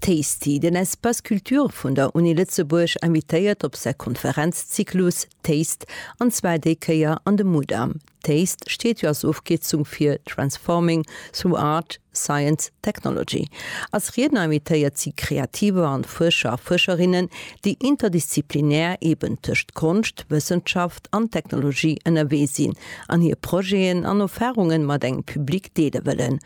Tasty, Den Espace Culture vun der Uni Lëtzebuerg invitéiert op säi Konferenzzyklus Taste, an zwar déi Kéier an de Mudam. Taste steet jo als Ofkierzung fir Transforming through Art, Science, Technology. Als Riedner invitéiert si Kreativer an Fuerscher a Fuerscherinnen, déi interdisziplinär eben tëscht Konscht, Wëssenschaft an Technologie ënnerwee sinn an hir Projeten an Erfarungen mat engem Public deele wëllen.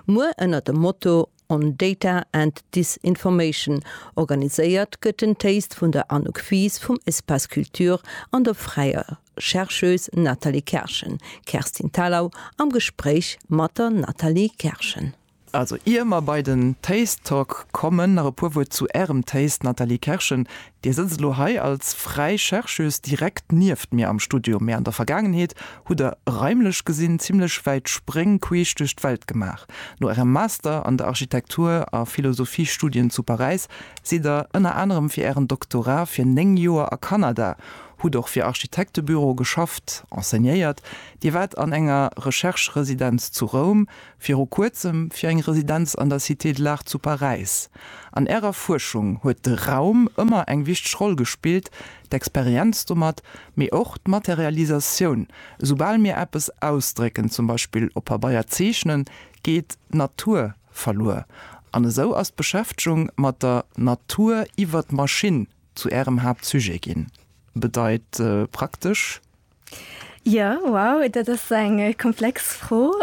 Muer ënner dem Motto. on Data and Disinformation organiséiert gëtt den Taste vun der Anouk Fies vum Espace Culture an der fräier Chercheuse Nathalie Kerschen, Kerstin Thalau am Gespréich mat der Nathalie Kerschen. Also ier mer bei den Taste Talk kommen, nach e puer Wuert zu Ärem Taste, Nathalie Kerschen, Dir sëtzt elo hei als fräi Chercheuse direkt nieft mir am Studio, mee an der Vergaangenheet hutt Der, raimlech gesinn, zimmlech wäit Spréng queesch duerch d'Welt gemaach. No Ärem Master an der Architektur a Philosophiestudien zu Paräis sidd Der ënner anerem fir Ären Doktorat fir néng Joer a Kanada, hutt och fir Architektebüroe geschafft, enseignéiert. Dir waart an enger Rechercheresidenz zu Roum, Viru kuerzem fir eng Residenz an der Cité de l'Art zu Paräis. An Ärer Fuerschung huet de Raum ëmmer eng wichteg Roll gespillt, d'Experienz domat, mee och d'Materialisatioun. Esoubal mir eppes ausdrécken, zum Beispill op Pabeier zeechnen, geet d'Natur verluer. An esou ass d'Beschäftegung mat der Natur iwwer d'Maschinn zu Ärem Haaptsujet ginn. Bedeit praktesch, Jo, wow, dat ass eng komplex Fro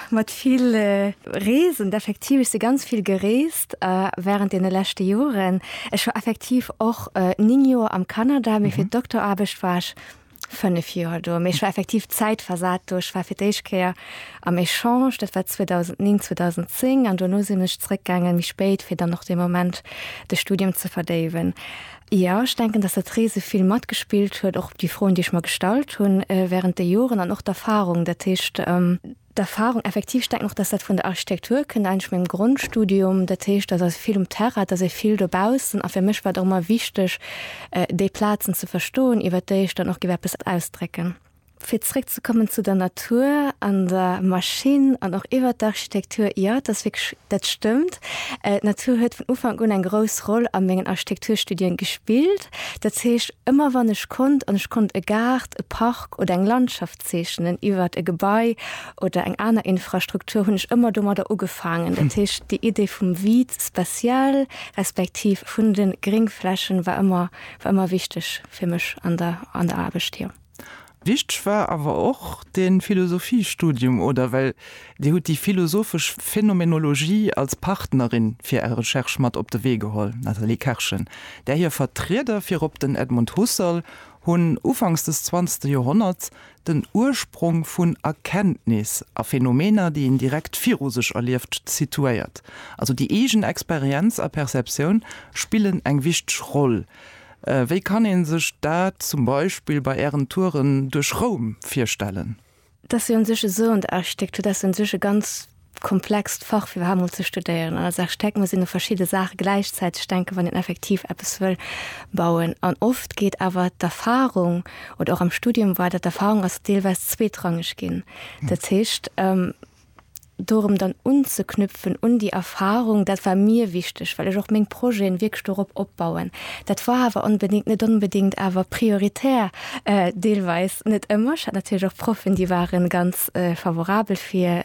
mat vill Reesen. Effektiv, ech si ganz vill gereest wärend deene leschte Joren. Ech war effektiv och néng Joer am Kanada, mee fir d'Doktoraarbecht war ech fënnef Joer do. Mee ech war effektiv zäitversat do. Ech war fir d'éischt Kéier am Echange, dat war 2009, 2010, an dono sinn ech zeréckgaangen méi spéit, fir dann och dee Moment de Studium ze verdéiwen. Jo, ech denken, dass dat Reese vill matgespillt huet, och op déi Froen, déi ech mer gestallt hunn während de Joren an och d'Erfahrung. Dat heescht, d'Erfahrung effektiv, ech denken och, dass dat vun der Architektur kënnt, eigentlech mengem Grondstudium. Dat heescht, dass ass vill um Terrain, et ass ee vill dobaussen. A fir mech war et och ëmmer wichteg, déi Plazen ze verstoen, iwwert déi ech dann och géif eppes ausdrécken. Fir zréck ze kommen zu der Natur an der Maschinn an och iwwert d'Architektur, jo, et ass wierklech, dat stëmmt. D'Natur huet vun Ufank un eng grouss Roll a mengen Architekturstudien gespillt. Dat heescht, ëmmer wann ech konnt an ech konnt e Gaart, e Park oder eng Landschaft zeechnen iwwert e Gebai oder eng aner Infrastruktur, hunn ech ëmmer domadder ugefaangen. Dat heescht, déi Idee vum vide spatial respektiv vun de Gréngflächen war ëmmer, war ëmmer wichteg fir mech an der, an der Aarbecht, jo. Wichteg war awer och de Philosophiestudium, oder? Well Dir hutt déi philosophesch Phenomenologie als Partnerin fir Är Recherche mat op de Wee geholl, d'Nathalie Kerschen, där hir Vertrieder, virop den Edmund Husserl, hunn ufanks des zwanzegste Joerhonnerts den Ursprong vun Erkenntnis a Phänomener, déi een direkt viru sech erlieft, situéiert. Also déi eegen Experienz a Perceptioun spillen eng wichteg Roll. Wéi kann een sech dat zum Beispill bei ären Touren duerch Roum virstellen? Dass jo un sech esou en Architektur, dass jo un sech e ganz komplext Fach fir iwwerhaapt mol ze studéieren. An als Architekt muss een u verschidde Saache gläichzäiteg denken, wann een effektiv eppes wëll bauen. An oft geet awer d'Erfahrung, oder och am Studium war dat d'Erfahrung, ass deelweis zweetrangeg ginn. Dat heescht, dorëm dann unzeknüpfen un déi Erfahrung, dat war mir wichteg, well ech och meng Projeten wierklech dorop opbauen. Dat war awer onbedéngt, net onbedéngt awer prioritär, deelweis, net ëmmer. Ech hat natierlech och Proffen, déi ware ganz favorabel fir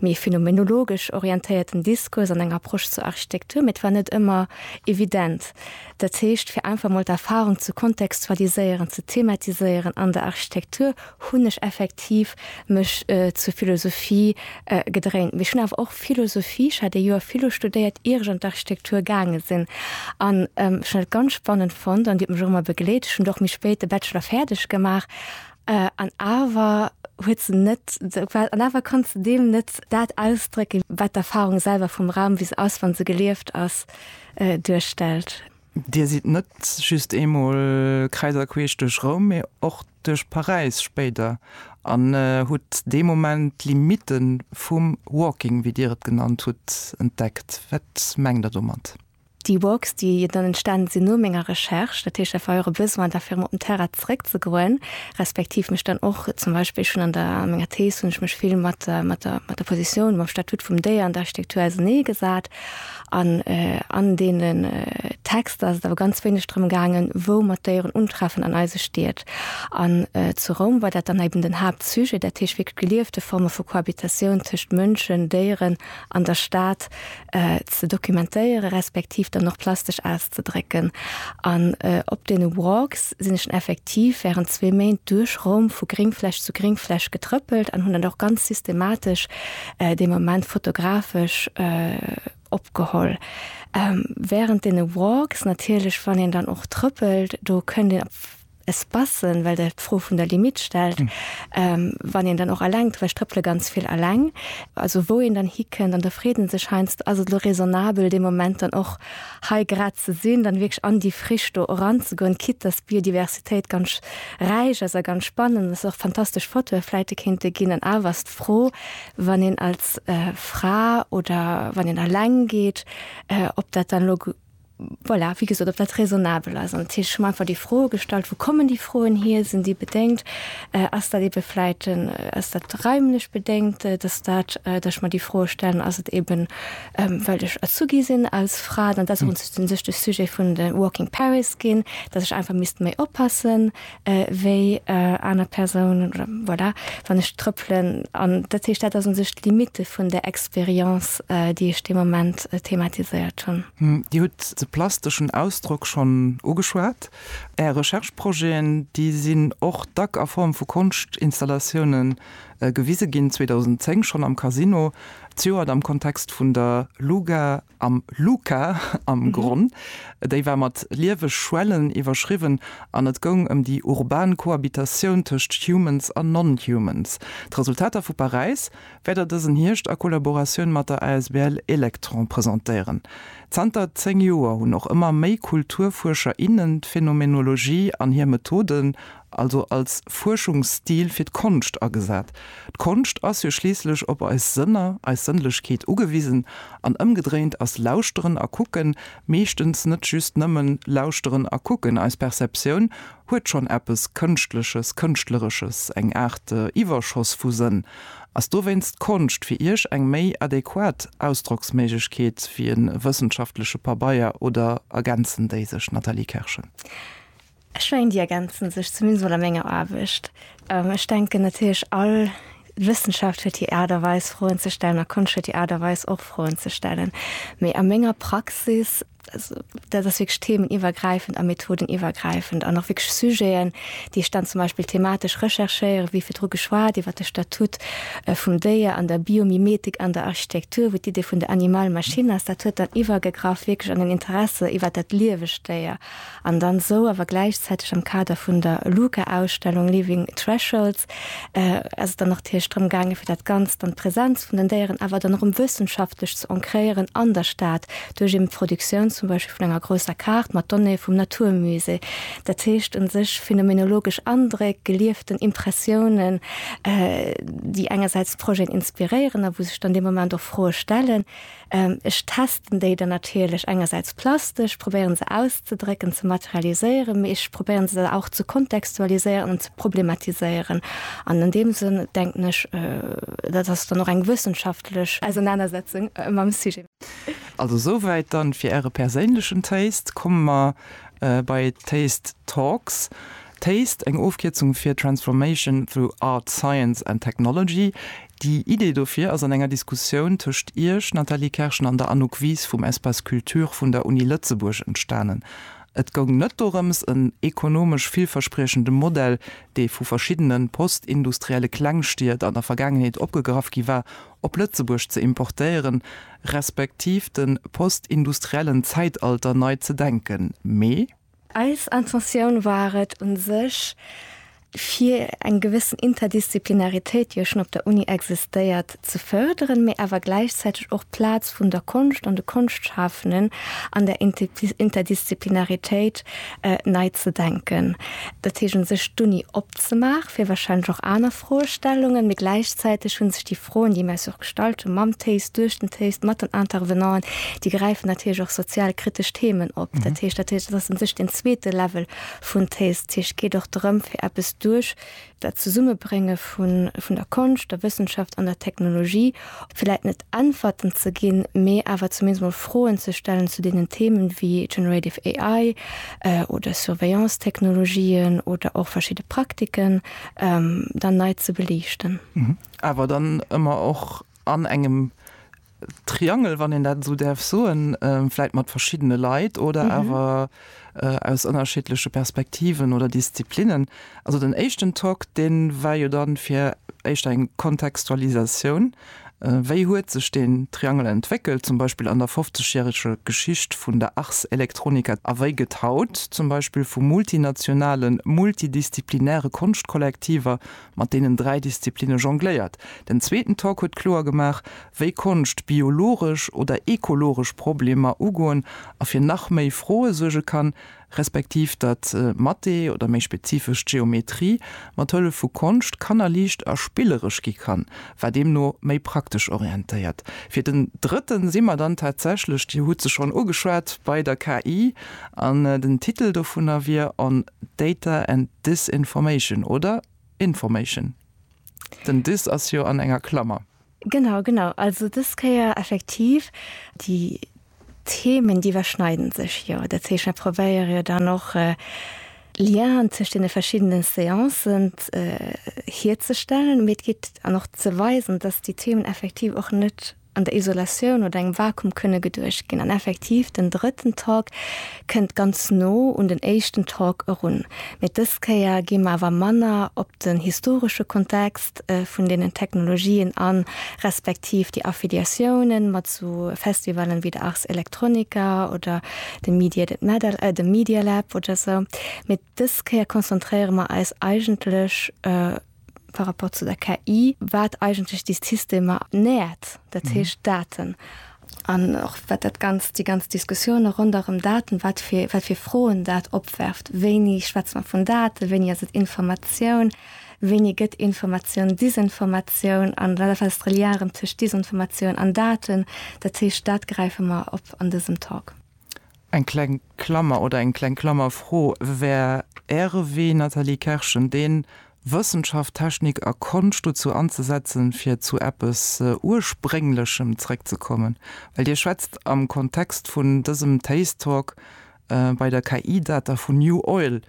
méi phenomenologesch orientéierten Diskurs an eng Approche zur Architektur, mee et war net ëmmer evident. Dat heescht, fir einfach emol d'Erfahrung ze kontextualiséieren, ze thematiséieren an der Architektur, hunn ech effektiv mech zur Philosophie gedréint. Mee ech hunn awer och Philosophie, ech hat ee Joer Philo studéiert, ier ech an d'Architektur gaange sinn. An ech hunn dat ganz spannend fonnt an déi huet mech och ëmmer begleet. Ech hunn do och méi spéit de Bachelor fäerdeg gemaach an awer huet se net esou gefall. An awer konnt se deem net dat ausdrécken, wat d'Erfarung selwer vum Raum, wéi se ass, wa se gelieft ass, duerstellt. Dir sidd net just eemol kräiser queesch duerch Roum, mee och duerch Paräis spéider an hutt dee Moment d'Limitte vum Walking, wéi Dir et genannt hutt, entdeckt. Wat mengt Der domat? Déi Walks, déi dann entstanen sinn no menger Recherche, dat heescht, dat war och e Besoin da fir em op den Terrain zeréckzegoen, respektiv mech dann och zum Beispill, ech hunn an der menger Thees hunn ech mech vill mat der Positioun, mam Statut vum Déier an der Architektur auserneegesat, An an deene Texter ass et awer ganz wéineg drëm gaangen, wou mer d'Déieren untreffen an eise Stied. An zu Roum war dat dann eben den Haaptsujet, dat heescht wierklech geliefte Forme vu Cohabitatioun tëscht Mënschen, Déieren an der Stad ze dokumentéieren, respektiv dann och plastesch auszedrécken. An op deene Walks. sinn ech dann effektiv während zwee Méint duerch Roum vu Gringfläch zu Gringfläch getrëppelt an hunn dat och ganz systematesch dee Moment fotografesch opgeholl. Während deene Walks natierlech, wann een dann och trëppelt, do kënnt een op Espacen, well Der d'Fro vun der Limite stellt, wann een dann och eleng, well ech trëppele ganz vill eleng, also wou een dann hikënnt an da freet ee sech, heiansdo ass et elo raisonnabel dee Moment dann och hei grad ze sinn, dann wierklech an déi Frisch do eranzegoen, quitte dass d'Biodiversitéit ganz räich ass a ganz spannend ass, och fantastesch Fotoe vläichte kéinte ginn. An awer ass d'Fro, wann een als Fra oder wann een eleng geet, ob dat dann elo, voilà, wéi gesot, ob dat raisonnabel ass. An ech hu mer einfach déi Fro gestallt, wou kommen déi Froen hier, sinn déi bedéngt, ass dat eebe vläicht, ass dat raimlech bedéngt, dass dat, dass ech mer déi Froe stellen, ass et eeben, Ähm, well ech Azugi sinn als Fra, dann dat uns den sech de Sujet vun de Walking Paris ginn, dat ech einfach misst méi oppassen äh, wéi äh, aner Persounen oder voilà, wann ech trëppelen an dat heescht dat ass un sech d'Limite vun der Experience, äh, déi ech de Moment äh, thematiséiert hunn. Hm, Dir hutt de plasteschen Ausdrock schonn ugeschwat. Är Recherche-Projeten, déi sinn och dack a Form vu Konschtinstallatiounen Gewise ginn, 2010 schonn am Casino, zejoert am Kontext vun der Luga am Luca am Gronn. Déi war mat lieweg Schwellen iwwerschriwwen an et goung ëm déi urban Cohabitatioun tëscht Humans an Non-Humans. D'Resultater vu Paräis wäert Der dësen Hierscht a Kollaboratioun mat der asbl Elektron presentéieren. Zanter 10 Joer hunn och ëmmer méi Kulturfuerscher, innen d'Phänomenologie an hir Methoden also als Fuerschungsstil fir d'Konscht agesat. D'Konscht ass jo schliisslech op eis Sënner, eis Sënnlechkeet ugewisen, an ëmgedréint ass Lauschteren a Kucken meeschtens net just nëmmen Lauschteren a Kucken. Eis Perceptioun huet schonn eppes Kënschtleches, Kënschtleresches, eng Aart Iwwerschoss vu Sënn. Ass dowéinst d'Konscht fir Iech eng méi adequat Ausdrocksméiglechkeet wéi e wëssenschaftleche Pabeier oder ergänzen déi sech? Nathalie Kerschen. Ech mengen déi ergänzen sech, zumindest mol a menger Aarbecht. Ech denken natierlech all Wëssenschaft huet hir Aart a Weis Froen ze stellen a Konscht huet hir Aart a Weis och Froen ze stellen. Mee a menger Praxis, dat ass wierklech themeniwwergräifend a methodeniwwergräifend an och wierklech Sujeten, déi ech dann zum Beispill thematesch recherchéieren, wéi virdru geschwat iwwert de Statut vum Déier an der Biomimetik an der Architektur, wou d'Idee vun der Animal-Machine ass. Dat huet dann iwwergegraff wierklech an den Interesse iwwert dat liewegt Déier. An dann esou awer gläichzäiteg am Kader vun der LUCA-Ausstellung Leaving Thresholds ass et dann natierlech drëm gaangen, fir dat Ganzt an d'Presenz vun den Déieren awer dann erëm wëssenschaftlech ze ancréieren an der Stad duerch eben d'Produktioun zum Beispill vun enger grousser Kaart mat Donnéeë vum Naturmusée. Dat heescht un sech phänomenologesch Andréck, gelieften Impressiounen, déi engersäits d'Projeten inspiréieren a wou sech dann dee Moment och Froe stellen, Ech testen déi dann natierlech engersäits plastesch, probéieren se auszedrécken, ze materialiséieren, mee ech probéieren se dann och ze kontextualiséieren an ze problematiséieren. An an deem Sënn denken ech, dat ass dann och eng wëssenschaftlech Ausernanersetzung mam Sujet. Also esouwäit dann fir Äre perséinlechen Taste. Komme mer bei d'Taste Talks. Taste, eng Ofkierzung fir Transformation through Art, Science and Technology. Déi Idee dofir ass an enger Diskussioun tëscht Iech, Nathalie Kerschen, an der Anouk Wies vum Espace Culture vun der Uni Lëtzebuerg entstanen. Et goung net dorëms, en ekonomesch villverspriechende Modell, dee vu verschiddene postindustrielle Klengstied an der Vergaangenheet opgegraff gi war, op Lëtzebuerg ze importéieren, respektiv de postindustriellen Zäitalter nei ze denken, mee. Eis Intentioun war et u sech, fir eng gewëssen Interdisziplinaritéit, déi jo schonn op der Uni existéiert, ze fërderen, mee awer gläichzäiteg och d'Plaz vun der Konscht an de Konschtschafenden an där Interdisziplinaritéit nei ze denken. Dat heescht u sech d'Uni opzemaach fir warscheinlech och aner Froestellungen, mee gläichzäiteg hu sech déi. Froen, déi mir eis och gestallt hunn, mam Téis, duerch den Téis, mat den Intervenanten, déi gräifen natierlech och sozialkritesch Themen op. Dat heescht, dat heescht, dat ass un sech deen zweete Level vun Téis. Dat heescht, et geet och drëm, fir eppes duerch dat Zesummebrénge vun der Konscht, der Wëssenschaft an der Technologie, vläit net Äntwerten ze ginn, mee awer zumindest emol Froen ze stellen zu deenen Themen wéi Generative AI oder Surveillance-Technologien oder och verschidde Praktiken dann nei ze beliichten. awer dann ëmmer och an engem Triangel, wann een dat esou däerf soen, vläit mat verschiddene Leit oder awer aus ënnerschiddleche Perspektiven oder Disziplinnen. Also den éischten Tok, dee war jo dann fir d'éischt eng Kontextualisatioun, wéi huet sech deen Triangel entwéckelt, zum Beispill an der fofzegjäreger Geschicht vun der Ars Electronica, a wéi gëtt haut zum Beispill vu multinationalen, multidisziplinäre Konschtkollektiver mat deenen dräi Disziplinne jongléiert. Den zweeten Talk huet kloer gemaach, wéi Konscht biologesch oder ekologesch Problemer ugoen a fir nach méi Froe suerge kann, respektiv datt Mathé oder méi spezifesch d'Geometrie mat Hëllef vu Konscht kannerliicht a spilleresch gi kann, war deemno méi praktesch orientéiert. Fir den drëtten si mer dann tatsächlech, Dir hutt se schonn ugeschwat, bei der KI an den Titel dovunner wier On. Data and disinformation, oder? Information. Den dis ass jo an enger Klammer. Genau, genau. Also des Kéier effektiv déi Themen, déi iwwerschneiden sech jo. Dat heescht, mer probéiere jo dann och Lienen tëscht deene verschiddene Seancen hierzestellen, mee et geet an och ze weisen, datt déi Themen effektiv och net, an der Isolatioun oder engem Vakuum kënne geduecht ginn. An effektiv, den drëtten Talk kënnt ganz no un den éischten Talk erun. Mee dës Kéier gi mer awer manner op den historesche Kontext vun deenen Technologien an, respektiv déi Affiliatiounen mat sou Festivallen wéi der Ars Electronica oder dem Media That Matter, dem Media Lab oder sou. Mee dës Kéier konzentréiere mer eis eigentlech par rapport zu der KI, wat eigentlech déi Systemer nährt, dat heescht mhm. Daten. An och wat dat ganz déi ganz Diskussioune ronderem Daten, wat fir wat fir Froen dat opwerft, wéini schwätzt man vun Daten, wéini ass et Informatioun, wéini gëtt Informatioun, Disinformatioun an wat fest Reliarem tech Disinformatioun an Daten, dat heescht dat gräife mer op an dësem Talk. Eng kleng Klammer oder eng kleng Klammerfro, Wär Äre Wee, Nathalie Kerschen, deen, Wëssenschaft, Technik a Konscht dozou anzesetzen, fir zu eppes Ursprénglechem zréckzekommen? Well Dir schwätzt am Kontext vun dësem Taste Talk bei der KI-Data vun New Oil,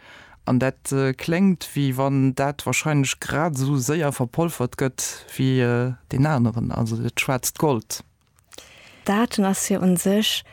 an dat kléngt, wéi wann dat wahrscheinlech grad esou séier verpolfert gëtt wéi deen aneren, also dat schwaarzt Gold. Daten ass jo un sech,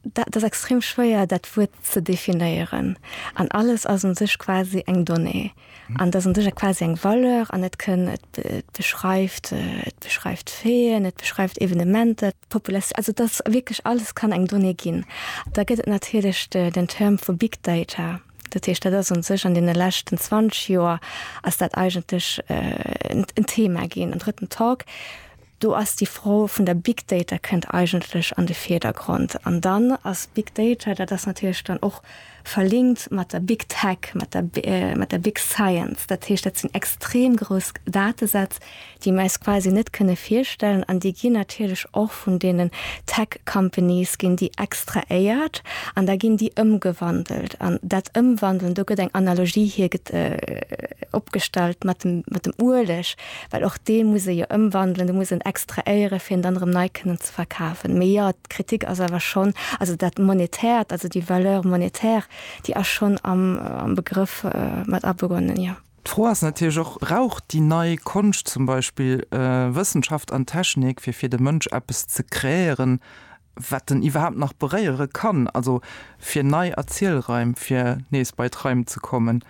dat ass extrem schwéier dat Wuert ze definéieren. An alles ass un sech quasi eng Donnée. An dass un sech quasi eng Valeur an et kënn et beschreift et beschreift Feeën, et beschreift Evenementer, d'Populatioun, also dass wierklech alles kann eng Donnée ginn. Da gëtt et natierlech den Term vu Big Data. Dat heescht dat ass un sech an deene leschten 20 Joer ass dat eigentlech en Thema ginn, en drëtten Talk. Do ass déi Fro vun der Big Data kënnt eigentlech an de Virdergrond. An dann ass Big Data, dat ass natierlech dann och verlinkt mat der Big Tech, mat der, mat der Big Science. Dat heescht, dat sinn extrem grouss Datesätz, déi mir eis quasi net kënne virstellen. An déi ginn natierlech och vun deenen Tech Companies ginn déi extraéiert an da ginn déi ëmgewandelt. An dat Ëmwandeln, do gëtt eng Analogie hierge, opgestallt mat dem, mat dem Ueleg. Well och dee muss e jo ëmwandelen, dee muss en extraéieren, fir en dann erëm nei kënnen ze verkafen. Mee jo, d'Kritik ass awer schonn, also dat Monetäert, also déi Valeur monétaire, déi ass schonn am Begrëff mat abeugonnen, jo. D'Fro ass natierlech och, Brauch déi nei Konscht zum Beispill Wëssenschaft an Technik, fir fir de Mënsch eppes ze kreéieren? wat en iwwerhaapt nach beréiere kann, also fir nei Erzielraim, fir nees bei d'Raim ze kommen.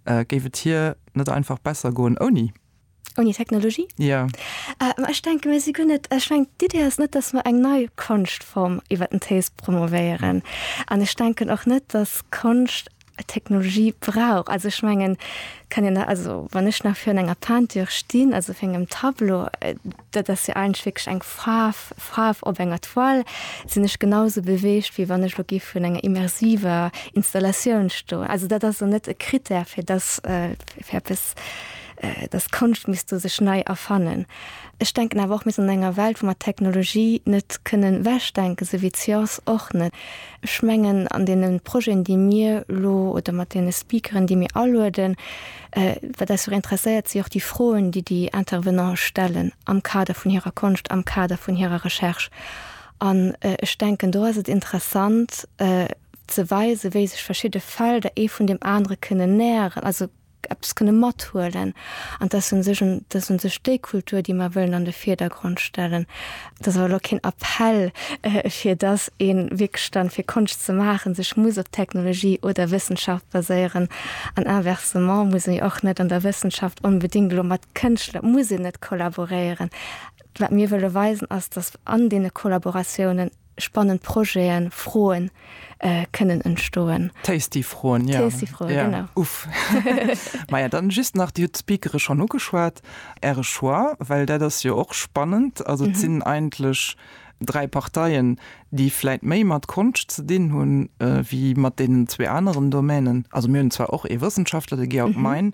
Géif et hir net einfach besser goen ouni? Ouni Technologie? Jo. Ma ech denke mir si guer net, ech mengen d'Idee ass net, datt mer eng nei Konschtform iwwer den Téis promovéieren an ech denken och net, datt Konscht Technologie brauch. Also ech mengen kann en also wann ech nach fir an enger Peinture stinn, also fir engem Tableau, dat ass jo eigentlech wierklech eng Faarf, Faarf op enger Toile, sinn ech genau sou beweegt, wéi wann ech elo géif vun enger immersiver Installatioun stoen. Also dat ass elo net e Krittär, fir dass fir eppes, dass d'Konscht misst do sech nei erfannen. Ech denken awer och, mir sinn an enger Welt, wou mer d'Technologie net kënnen ewechdenken, sou wéi d'Science och net. Ech mengen, an deene Projeten, déi mir elo, oder mat deene Speakeren, déi mir alueden, wat eis och interesséiert, si och déi Froen, déi déi Intervenante stellen am Kader vun hirer Konscht, am Kader vun hirer Recherche. An ech denken, do ass et interessant ze weisen, wéi sech verschidde Felder ee vun deem anere kënnen näheren, also eppes kënne mathuelen an dass se sech un dass se sech déi Kultur, déi mer wëllen an de Vierdergrond stellen. Et ass awer lo keen Appell, fir dass ee wierklech dann, fir Konscht ze maachen, sech muss op Technologie oder Wëssenschaft baséieren an inversement muss ee och net an der Wëssenschaft onbedéngt elo mat Kënschtler, muss een net kollaboréieren. Wat mir wëlle weisen, ass, dass an deene Kollaboratiounen, spannend Projeten, Froen äh, kënnen entstoen. Tasty Froen ja. Tasty Froen, ja. genau. Uff. Maja dann just nach Dir Speakere schon ugeschwat, Äre Choix, well dat ass jo och spannend. Also mhm. sinn eigentlech dräi Parteien, déi vläit méi mat Konscht ze dinn hunn äh, wéi mat deenen zwee aneren Domänen. Also mir hunn zwar och e Wëssenschaftler, de Georg mhm. Mein,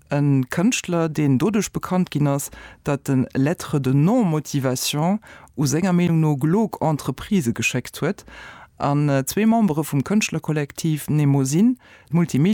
E Kënschtler, deen doduerch bekannt ginn ass, datt en Lettre de non-motivation u senger Meenung no glog Entreprisë geschéckt huet an zwee Membere vum Kënschtlerkollektiv Nemosin d'Multimedia-Agentur